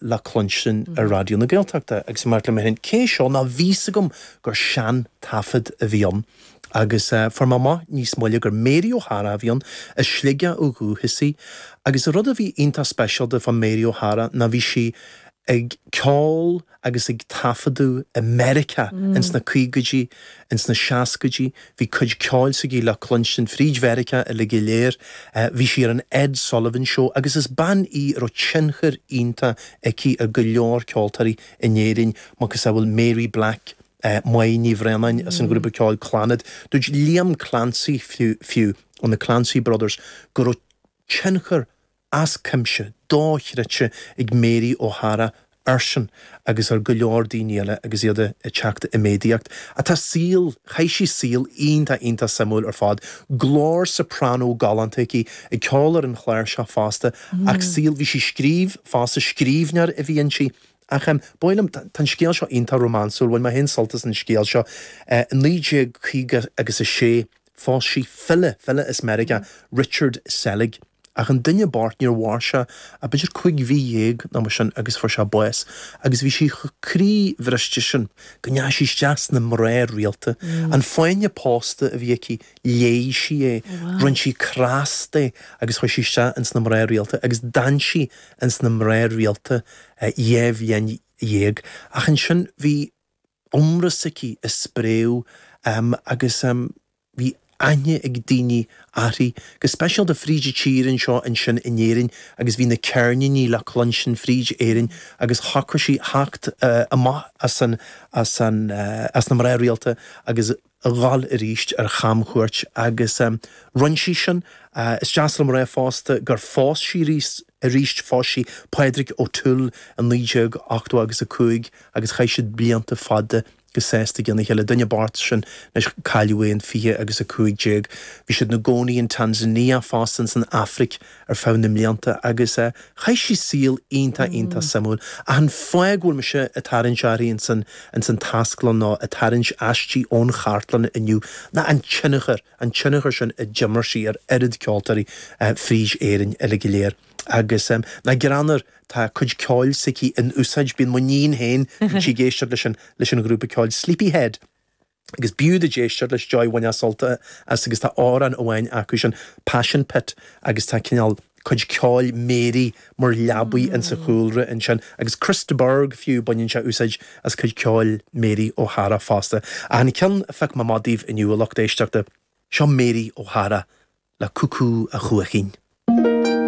le cluinstin ar Raidió na Gaeltachta agus mé ag ráit liom féin, cé é seo ná bhí a fhios agam gur sean-taifead a bhí ann agus fuair mé amach níos moille gur Mary O'Hara a bhí ann, as Sligeach ó dhúchas í agus an rud a bhí iontach speisialta fá Mary O'Hara ná bhí sí ag ceol agus ag taifeadadh i Meiriceá ins na caogaidí, ins na seascaidí. Bhí cuid ceoil s'aici le cluinstin fríd Mheiriceá uilig go léir. Bhí sí ar an Ed Sullivan Show agus is bean í a raibh tionchar iontach aici ar go leor ceoltóirí in Éirinn, macasamhail Mary Black, Máire Ní Bhraonáin as an ghrúpa ceoil Clannad. Dúirt Liam Clancy fiú, ón The Clancy Brothers, go raibh tionchar. As cuimse, dochreidte ag Mary O'Hara airsean agus ar go leor daoine eile agus iad ag teacht i méadaíocht. Tá saol, chaith sí saol iontach iontach suimiúil ar fad. Glór soprano galánta aici, ag ceol ar an chláirseach fosta ach saol, bhí sí ag scríobh fosta, scríbhneoir a bhí inti. Ach em, ba mhaith liom, tá an scéal seo iontach rómánsúil, bhain mé féin sult as an scéal seo. I naoi déag caoga agus a sé, Phós sí file, file as Meiriceá, Richard Selig, ach an duine bocht, níor mhair sé ach b'fhéidir cúig mhí dhéag nó mar sin agus fuair sé bás, agus bhí sí chomh croíbhriste sin go ndeachaigh sí isteach sna mná rialta. An fáinne pósta a bhí aici, leáigh sí é, rinne sí cros de agus chuaigh sí isteach ins na mná rialta agus d'fhan sí ins na mná rialta dhá bhliain dhéag. Ach ansin bhí. iomrá s'aici ag spréadh agus bhí aithne ag daoine uirthi, go speisialta fríd an tír anseo ansin in Éirinn agus bhí na ceirníní le cluinstin fríd Éirinn agus shocraigh sí theacht amach as na mná rialta agus a dhul arís ar chamchuairt agus rinne sí sin. Is deas liom a rá fosta gur phós sí arís, phós sí Pádraig O'Toole i 1985 agus chaith siad blianta fada go sásta lena chéile. Duine bocht sin anois, cailleadh é in 2015. Bhí siad ina gcónaí in Tanzania fosta, ins an Afraic ar feadh na mblianta agus chaith sí saol iontach, iontach suimiúil. Ach an fáth go bhfuil mise ag tarraingt uirthi ins an Taisclann nó ag tarraingt aisti ón chartlann inniu ná an tionchar, an tionchar sin a d'imir sí ar oiread ceoltóirí fríd Éirinn uilig go léir. Agus nach greannmhar, tá cuid ceoil s'aici in úsáid, bíonn m'iníon féin, bíonn sí ag éisteacht leis an, leis an ghrúpa ceoil Sleepyhead. agus b'fhiú duit éisteacht leis Joy bhainfeá sult as agus tá amhrán amháin acu sin Passion Pit agus tá cineál cuid ceoil Mary mar leabaidh in sa chúlra ansin agus Chris de Burgh fiú baineann sé úsáid as cuid ceoil Mary O'Hara fosta ach an ceann a phioc mé amach daoibh inniu a lucht éisteachta seo Mary O'Hara le Cúcú a Chuaichín.